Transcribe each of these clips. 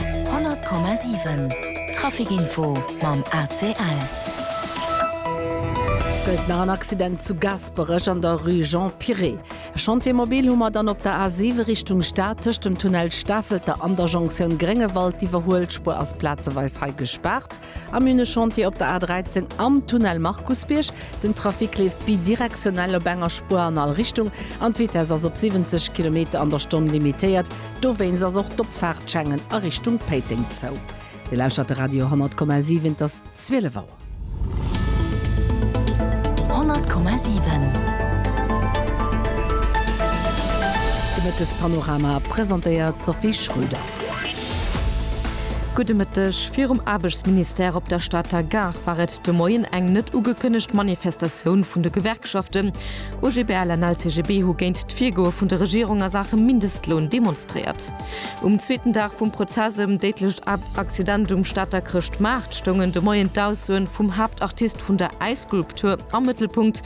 100,7 Traficinfo mam ACL. Gëllt nach en Accident zu Gaasperech an der Rue Jean Piret. E Chantier mobil hu mer dann op der A7 Richtung Stad tëscht dem Tunnel Stafelter an der Jonktioun Gréngewald. D'Iwwerhuelspuer ass plazeweis hei gespaart. Am hunn e Chantier op der A 13 am Tunnel Markusbierg. Den Trafic leeft bidirektionell op enger Spuer an all Richtung an d'Vitess ass op 70 Kilometer an der Stonn limitéiert. Dowéinst ass och d'Opfaartschengen a Richtung Péiteng zou. Dir lauschert de Radio 10,7, et ass 12 Auer. 10,7 De Mëttespanorama presentéiert d'Sophie Schröder. Gudde Mëtteg. Virum Aarbechtsministère op der Stater Gare war et de Moien eng net ugekënnegt Manifestatioun vun de Gewerkschaften. OGBL an LCGB hu géint d'Virgoe vun der Regierung a Saache Mindestloun demonstréiert. Um zweeten Dag vum Prozess ëm déidlecht Accident um Stater Chrëschtmaart stoungen de Moien d'Aussoe vum Haaptartist vun der Äisskulptur am Mëttelpunkt.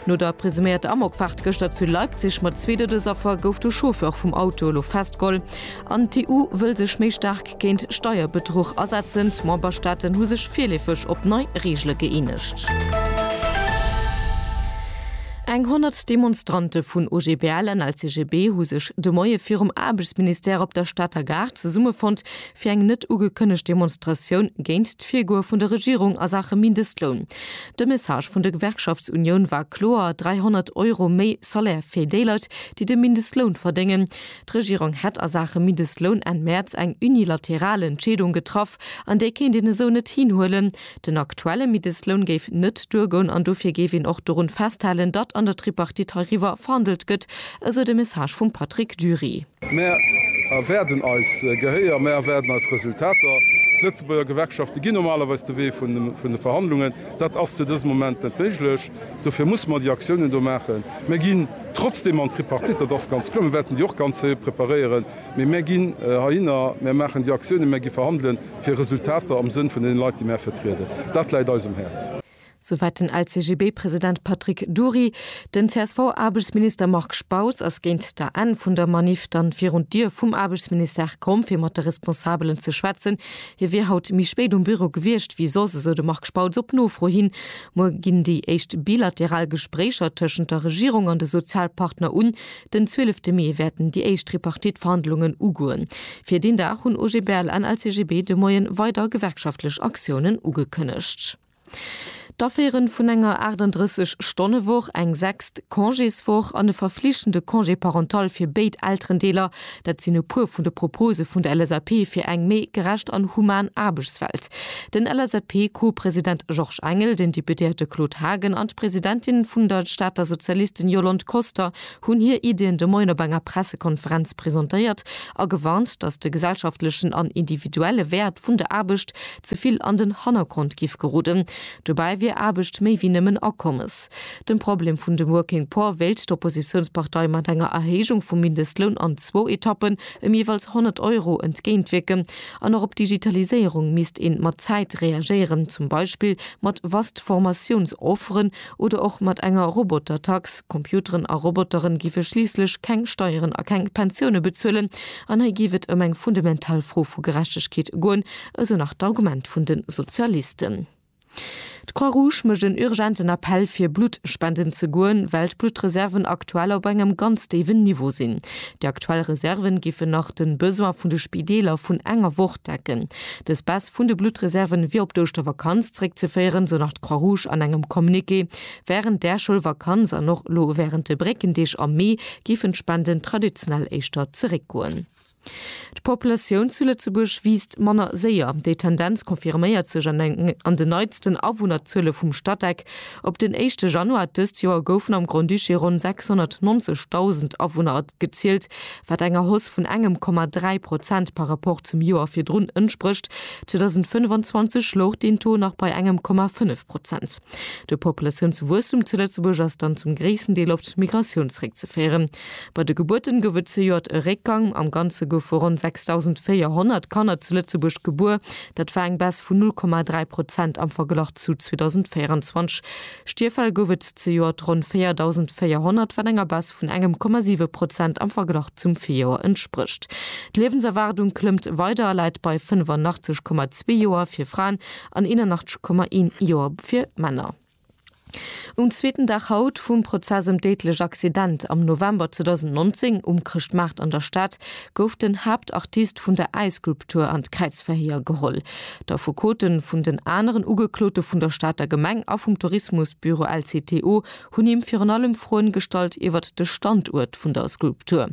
No der presuméierter Amokfaart gëschter zu Leipzig mat zwee Doudesaffer gouf de Chauffeur vum Auto elo festgeholl. An d'EU wëll sech méi staark géint Steierbedruch asetzen. D'Memberstaaten hu sech virleefeg op nei Reegele gëeenegt. Eng 100 Demonstrante vun OGBL an LCGB hu sech de Moie virum Aarbechtsministère op der Stater Gare zesummefonnt, fir eng net ugekënnegt Demonstratioun géint d'Virgoe vun der Regierung a Saache Mindestloun. De Message vun der Gewerkschaftsunioun war kloer, 300 Euro méi Salaire fir déi Leit, déi de Mindestloun verdéngen. D'Regierung hätt a Saache Mindestloun Enn Mäerz eng unilateral Entscheedung getraff, an déi kéint een esou net hinhuelen. Den aktuelle Mindestloun géif net duergoun an dofir géif een och dorun festhalen, datt an der Tripartite heiriwwer verhandelt gëtt, esou de Message vum Patrick Dury. Mär erwaarden eis Gehéier, mär erwaarden eis Resultater. D'Lëtzebuerger Gewerkschafte ginn normalerweis de Wee vun de Verhandlungen. Dat ass zu dësem Moment net méiglech. Dofir mussen mer déi Aktiounen do maachen. Mer ginn trotzdeem an d'Tripartite, dat ass ganz kloer. Mer wäerten déi och ganz héi preparéieren. Mee mer ginn heihinner, mer maachen déi Aktiounen, mer gi verhandelen, fir Resultater am Sënn vun deene Leit, déi mer vertrieden. Dat läit eis um Häerz. Souwäit den LCGB-President Patrick Dury. Den CSV-Aarbechtsminister Marc Spaus ass géint der Enn vun der Maniff dann virun d'Dier vum Aarbechtsministère komm, fir mat de Responsabelen ze schwätzen. Hie wier haut méi spéit um Büro gewiescht wéi soss, esou de Marc Spautz op Nofro hin. Muer ginn déi éischt bilateral Gespréicher tëschent der Regierung an de Sozialpartner un. Den 12 Mee wäerten déi éischt Tripartite-Verhandlungen ugoen. Fir deen Dag hunn OGBL an LCGB de Moie weider gewerkschaftlech Aktiounen ugekënnegt. D'Aféiere vun enger 38 Stonne Woch, eng sechst Congéswoch an e verflichtende Congé parental fir béid Elterendeeler Dat sinn e puer vun de Propose vun der LSAP fir eng méi gerecht an human Aarbechtswelt. Den LSAP-Co-President Georges Engel, den Deputéierte Claude Haagen an d'Presidentin vun der Stater Sozialisten Yolande Koster hunn hir Iddien de Moien op enger Pressekonferenz presentéiert a gewarnt, datt de gesellschaftlechen an individuelle Wäert vun der Aarbecht ze vill an den Hannergrond géif geroden. Dobäi wier Aarbecht méi wéi nëmmen Akommes. Dem Problem vun de Working Poor wéilt d'Oppositiounspartei mat enger Erhéijung vum Mindestloun an zwou Etappen ëm jeeweils 100 Euro entgéintwierken. An och op d'Digitaliséierung misst ee mat Zäit reagéieren, zum Beispill mat vast Formatiounsofferen oder och mat enger Robotertax. Computeren a Robotere géife schliisslech keng Steieren a keng Pensioune bezuelen. An hei géif et ëm eng fundamental Fro vu Gerechtegkeet goen, esou nach d'Argument vun de Sozialisten. D'Croix-Rouge mécht en urgenten Appell fir Blutt spenden ze goen, well d'Bluttreserven aktuell op engem ganz déiwen Niveau sinn. Déi aktuell Reserven géifen nach den Besoin vun de Spideeler vun enger Woch decken. Dës Baisse vun de Bluttreserven wier op d'Ouschtervakanz zréckzeféieren, sou nach d'Croix-Rouge an engem Communiqué. Wärend där Schoulvakanz an och elo wärend de Bréckendeeg am Mee géifen d'Spenden traditionell éischter zeréckgoen. D'Populatioun zu Lëtzebuerg wiisst manner séier. Déi Tendenz confirméiert sech an den neitsten Awunnerzuele vum Statec. Op den éischte Januar dëst Joer goufen am Grand-Duché ronn 690.000 Awunner gezielt, wat enger Hausse vun engem Komma dräi Prozent par Rapport zum Joer virdrun entsprécht. 2025 louch deen Taux nach bei engem Komma fënnef Prozent. De Populatiounswuesstum zu Lëtzebuerg ass dann zum gréissten Deel op d'Migratioun zeréckzeféieren. Bei de Gebuerten gouf et zejoert e Réckgang. Am Ganze goufe ronn 6.400 Kanner zu Lëtzebuerg gebuer. Dat war eng Baisse vun 0,3 Prozent am Verglach zu 2024. Stierfäll gouf et zejoert ronn 4.400, wat enger Baisse vun engem Komma 7 Prozent am Verglach zum Virjoer entsprécht. D'Liewenserwaardung klëmmt weider a läit bei 85,2 Joer fir Fraen an 81,1 Joer fir Männer. Um zweeten Dag haut vum Prozess ëm d'déidlech Accident am November 2019 um Chrëschtmaart an der Stad gouf den Haaptartist vun der Ice Group Tour an d'Kräizverhéier geholl. D'Affekote vun den aneren Ugeklote vun der Stater Gemeng a vum Tourismusbüro LCTO hunn him virun allem Froen gestallt iwwert de Standuert vun der Group Tour.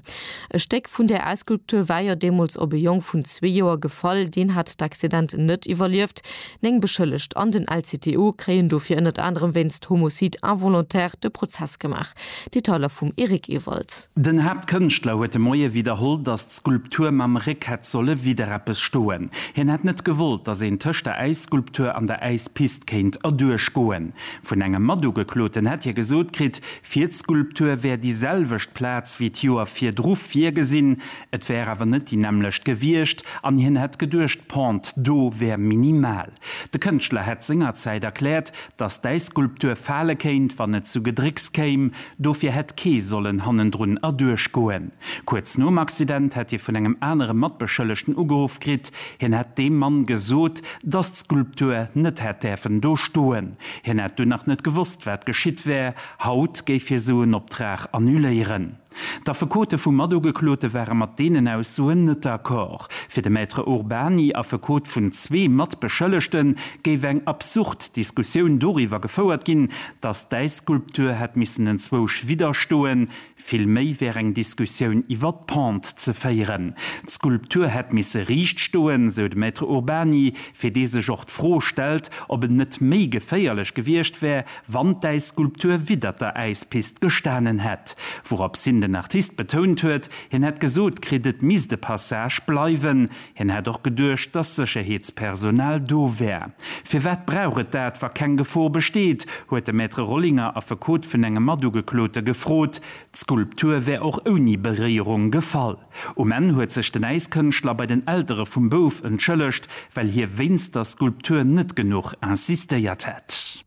E Stéck vun där Ice Group Tour war jo deemools op e Jong vun zwee Joer gefall, deen hat d'Accident net iwwerlieft. Néng Beschëllegt an den LCTO kréien dofir ënnert anerem wéinst Homocide involontaire de Prozess gemaach. Detailer vum Eric Ewald. Den Haaptkënschtler huet de Moie widderholl, datt d'Skulptur mam Réck hätt solle widder eppes stoen. Hien hätt net gewollt, datt een tëscht der Äisskulptur an der Äispist kéint erduerch goen. Vun engem Matugekloten hätt hie gesot kritt, fir d'Skulptur wär déi selwecht Plaz wéi d'Joer virdru virgesinn, Et wär awer net déi nämmlecht gewiescht an hien hätt geduecht, d'Pente do wär minimal. De Kënschtler hätt sengerzäit erkläert, datt däi Skulptur fale kéint, wann et zu Gedrécks kéim. Dofir hätt kee sollen hannendrun erduerch goen. Kuerz nom Accident hätt hie vun engem anere Matbeschëllegten ugeruff kritt. Hien hätt deem Mann gesot, datt d'Skulptur net hätt däerfen do stoen. Hien hätt dunn nach net gewosst, wat geschitt wär. Haut géif hie sou en Optrag annuléieren. D'Affekote vum Matugeklote ware mat deenen Aussoen net d'accord. Fir de Maître Urbany, Affekot vun zwee Matbeschëllegten, géif eng absurd Diskussioun doriwwer gefouert ginn, datt d'Äisskulptur hätt missen enzwousch widderstoen. Vill méi wär eng Diskussioun iwwer d'Pente ze féieren. D'Skulptur hätt misse riicht stoen, sou de Maître Urbany, fir dee sech och d'Fro stellt, ob et net méi geféierlech gewiescht wär, Wann d'Äisskulptur widdert der Äispist gestanen hätt, wourop sin den Artist betount huet, hien hätt gesot kritt et misst e Passage bleiwen. Hien hätt och geduecht, dass Sécherheetspersonal do wär. Firwat brauch et dat, wa keng Gefor besteet? huet de Maître Rollinger, Affekot vun engem Matugeklote, gefrot. D'Skulptur wär och ouni Beréierung gefall. Um Enn huet sech den Äiskënschtler bei den Eltere vum Bouf entschëllegt, well hie wéinst der Skulptur net genuch insistéiert hätt.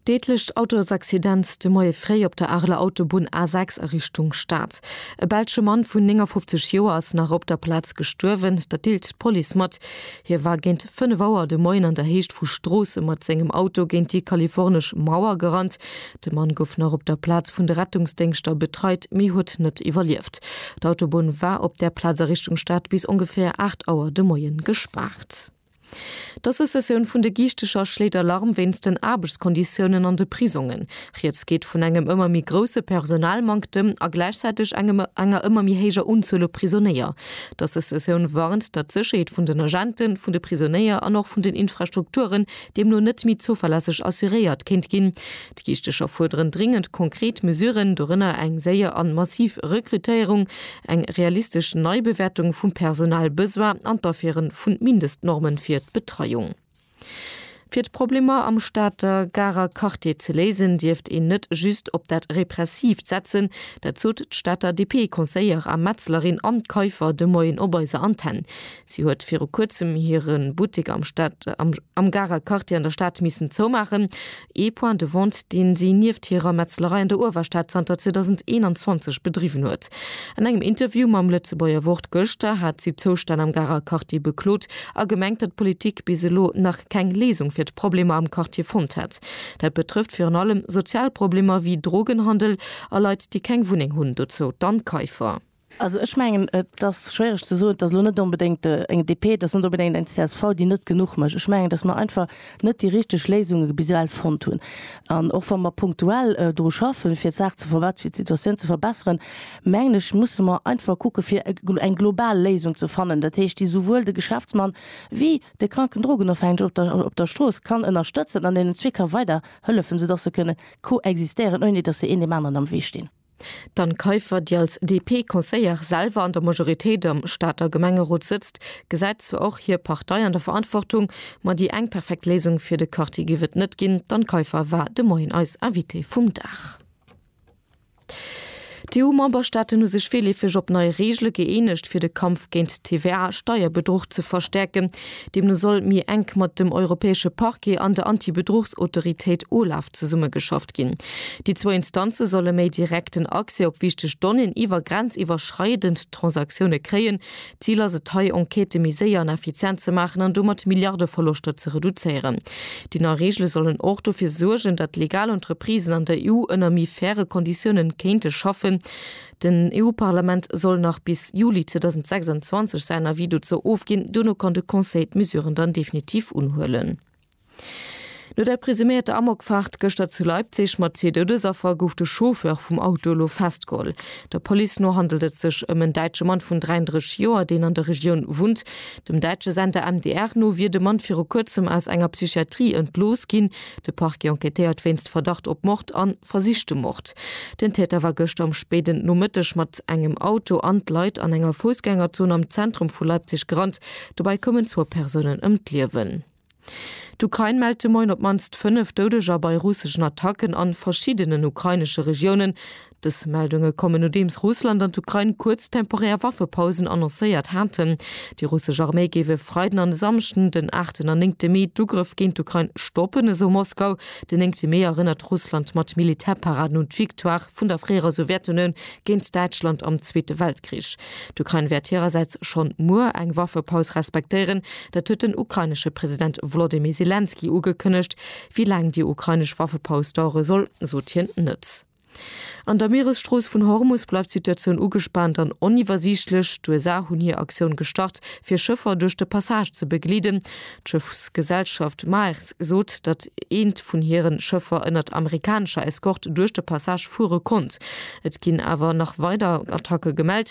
Deedlecht Autosaccident de Moie fréi op der Areler Autobunn A6 a Richtung Stad. E belsche Mann vun 59 Joer ass nach op der Plaz gestuerwen, dat deelt d'Police mat. Hie war géint 5 Auer de Moien an der Héicht vu Stroossen mat sengem Auto géint déi kalifornesch Mauer gerannt. De Mann gouf nach op der Plaz vun de Rettungsdéngschter betreit, mee huet net iwwerlieft. D'Autobunn war op där Plaz a Richtung Stad bis ongeféier 8 Auer de Moien gespaart. D'Associatioun vun de Giichtecher schléit Alarm wéinst den Aarbechtskonditiounen an de Prisongen. Rieds geet vun engem ëmmer méi grousse Personalmanktem a gläichzäiteg engem enger ëmmer méi héijer Unzuel u Prisonéier. D'Associatioun warnt, datt d'Sécherheet vun den Agenten, vun de Prisonéier an och vun den Infrastrukturen deemno net méi zouverlässeg assuréiert kéint ginn. D'Kiischtecher fuerderen dringend konkret Mesuren, dorënner eng séier an massiv Rekrutéierung, eng realistesch Neibewäertung vum Personalbesoin an d'Aféiere vun Mindestnormen fir d'Betreiung. Fir d'Problemer am Stater Garer Quartier ze léisen, dierft een net just op dat Repressiivt setzen. Dat sot d'Stater DP-Conseillère a Metzlerin Anne Kaiffer de Moien op eiser Antenn. Si huet viru kuerzem hire Buttek am Garer Quartier an der Stad missen zoumaachen. ee Point de vente, deen si nieft hirer Metzlerei an der Uewerstad zanter 2021 bedriwwen huet. An engem Interview mam Lëtzebuerger Wort gëschter hat si d'Zoustänn am Garer Quartier beklot a gemengt, datt d'Politik bis elo nach keng Léisung fir d'Problemer am Quartier fonnt hätt. Dat betrëfft virun allem sozial Problemer wéi Drogenhandel a Leit, déi keng Wunneng hunn, dozou d'Anne Kaiffer. Also ech mengen, et ass schwiereg ze soen, et ass elo net onbedéngt eng DP, et ass net onbedéngt eng csv, déi net genuch mécht. Ech mengen, datt mer einfach net déi richteg Léisunge bis ewell fonnt hunn. An och wa mer punktuell dru schaffen, fir d'Saach ze verbessern, fir d'Situatioun ze verbessern, mengen ech, musse mer einfach kucken, fir eng global Léisung ze fannen, dat heescht, déi esouwuel de Geschäftsmann wéi de kranken Drogenofhängege op der Strooss kann ënnerstëtzen an deenen zwee ka weiderhëllefen, soudatt se kënne koexistéieren, ouni datt se een deem aneren am Wee stinn. D'Anne Kaiffer, déi als DP-Conseillère selwer an der Majoritéit am Stater Gemengerot sëtzt, gesäit zwar och hir Partei an der Verantwortung, ma déi eng perfekt Léisung fir de Quartier géif et net ginn. D'Anne Kaiffer war de Moien eis Invitée vum Dag. D'EU-Memberstaaten hu sech virleefeg op nei Reegele gëeenegt, fir de Kampf géint d'TVA-Steierbedruch ze verstäerken. Deemno soll méi enk mat dem europäesche Parquet an der Antibedruchsautoritéit OLAF zesummegeschafft ginn. Déi zwou Instanze solle méi direkten Accès op wichteg Donnéeën iwwer grenziwwerschreidend Transaktioune kréien. Zil ass et hei, Enquêtë méi séier an effizient ze maachen an domat Milliardeverloschter ze reduzéieren. Déi nei Reegele sollen och dofir suergen, datt legal Entreprisen an der EU ënner méi faire Konditiounen kéinte schaffen. Den EU-Parlament soll nach bis Juli 2026 säin Avis dozou ofginn, duerno kann de Conseil d'Mesuren dann definitiv unhuelen. No der presuméierter Amokfaart gëschter zu Leipzig mat zwee Doudesaffer gouf de Chauffeur vum Auto elo festgeholl. Der Police no handelt et sech ëm en däitsche Mann vun 33 Joer, deen an der Regioun wunnt. Dem däitsche Sender MDR no wier de Mann viru kuerzem aus enger Psychiatrie entlooss ginn. De Parquet enquêtéiert wéinst Verdacht op Mord an Versichte Mord. Den Täter war gëschter am spéiden Nomëtteg mat engem Auto an d'Leit an enger Foussgängerzon am Zentrum vu Leipzig gerannt. Dobäi koumen zwou Persounen ëm d'Liewen. D'Ukrain mellt de Moien op d'mannst 5 Doudeger bei russeschen Attacken a verschiddenen ukrainesche Regiounen. Dës Meldunge kommen, nodeems Russland an d'Ukrain kuerz temporär Waffepausen annoncéiert haten. Déi russesch Arméi géif e Freiden an e Samschden, den aachten an néngte Mee, d'Ugrëff géint d'Ukrain stoppen, esou Moskau. Den 9 Mee erënnert Russland mat Militärparaden un d'Victoire vun der fréierer Sowjetunioun géint Däitschland am Zweete Weltkrich. D'Ukrain wäert hirersäits schonn muer eng Waffepaus respektéieren. Dat huet den ukrainesche President Wolodymyr Selenskyj ugekënnegt. Wéi laang déi ukrainesch Waffepaus dauere soll, sot hien net. An der Mieresstrooss vun Hormus bleift d'Situatioun ugespaant an oniwwersiichtlech. D'USA hunn hir Aktioun gestart, fir Schëffer duerch de Passage ze begleeden. D'Schëffsgesellschaft Maersk sot, datt eent vun hire Schëffer ënnert amerikanescher Eskort duerch de Passage fuere konnt. Et ginn awer nach weider Attacke gemellt.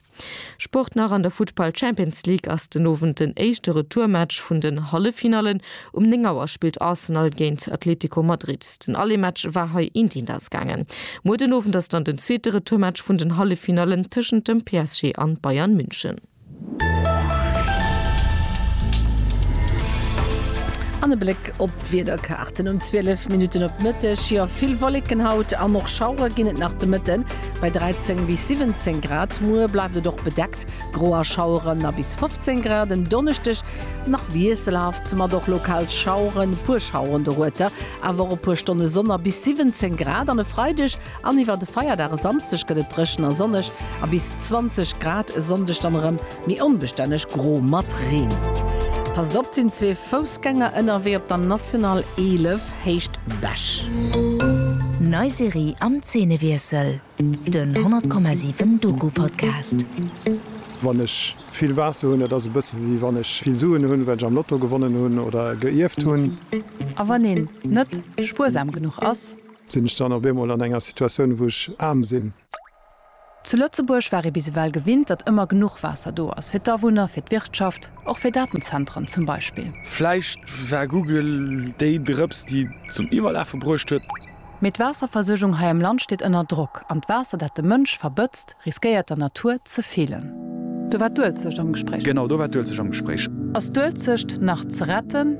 Sport nach an der Futtball Champions League ass den Owend den éischte Retourmatch vun den Halleffinallen. Um 9 Auer spillt Arsenal géint Atletico Madrid. Den Allé-Match war hei eendeent ausgaangen. Muer den Owend ass dann den zweete Retourmatch vun den Halleffinallen tëschent dem PSG an Bayern München. An e Bléck op d'Wiederkaarten um 12 Minutten op Mëtteg, jo vill Wolleken haut an och Schauere ginn et nach de Mëtten. Bei 13 bis 17 Grad muer bleift et och bedeckt, gro a Schaueren a bis 15 Grad en Donneschdeg nach wiesselhaft, mat och lokal Schaueren, e puer Schaueren dorueter, awer och e puer Stonne Sonn a bis 17 Grad an e Freideg an iwwer de Feierdag e Samsdeg gëtt et dréchen a sonneg a bis 20 Grad, e Sonndeg dann erëm méi onbestänneg gro mat Reen. Passt op, et sinn zwee Foussgänger ënnerwee op der National 11. héicht Besch. Nei Serie am Zeenewiessel, den 100,7 Doku-Podcast. Wann ech vill Waasser hunn, dat ass e bësse wéi wann ech vill Suen hunn, well ech am Lotto gewonnen hunn oder geierft hunn. A wann een net spuersam genuch ass? Sinn ech dann op eemol an enger Situatioun, wou ech aarm sinn? Zu Lëtzebuerg war ee bis ewell gewinnt, datt ëmmer genuch Waasser do ass, fir d'Awunner, fir d'Wirtschaft, och fir Datenzentren zum Beispill. Vläicht war Google déi Drëps, déi zum Iwwerlafe bruecht huet. Mee d'Waasserversuergung hei am Land steet ënner Drock, an d'Waasser, dat de Mënsch verbëtzt, riskéiert der Natur ze feelen. Do war d'Uelzecht am Gespréich. Genau, do war d'Uelzecht am Gespréich. Ass d'Uelzecht nach ze retten?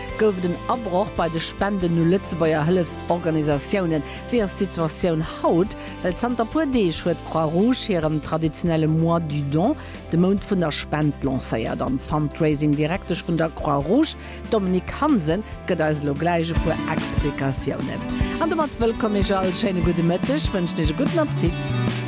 Gouf et en Abroch bei de Spenden u Lëtzebuerger Hëllefsorganisatiounen? Wéi ass d'Situatioun haut? Well zanter puer Deeg huet d'Croix Rouge hiren traditionelle Mois du Don, de Mount vun der Spend, lancéiert. An d'Fundraising-Direktesch vun der Croix Rouge, d'Dominique Hansen, gëtt eis elo gläich e puer Explikatiounen. An domat wëllkomm Iech all, schéine gudde Mëtteg, wënschen Iech e gudden Appetit.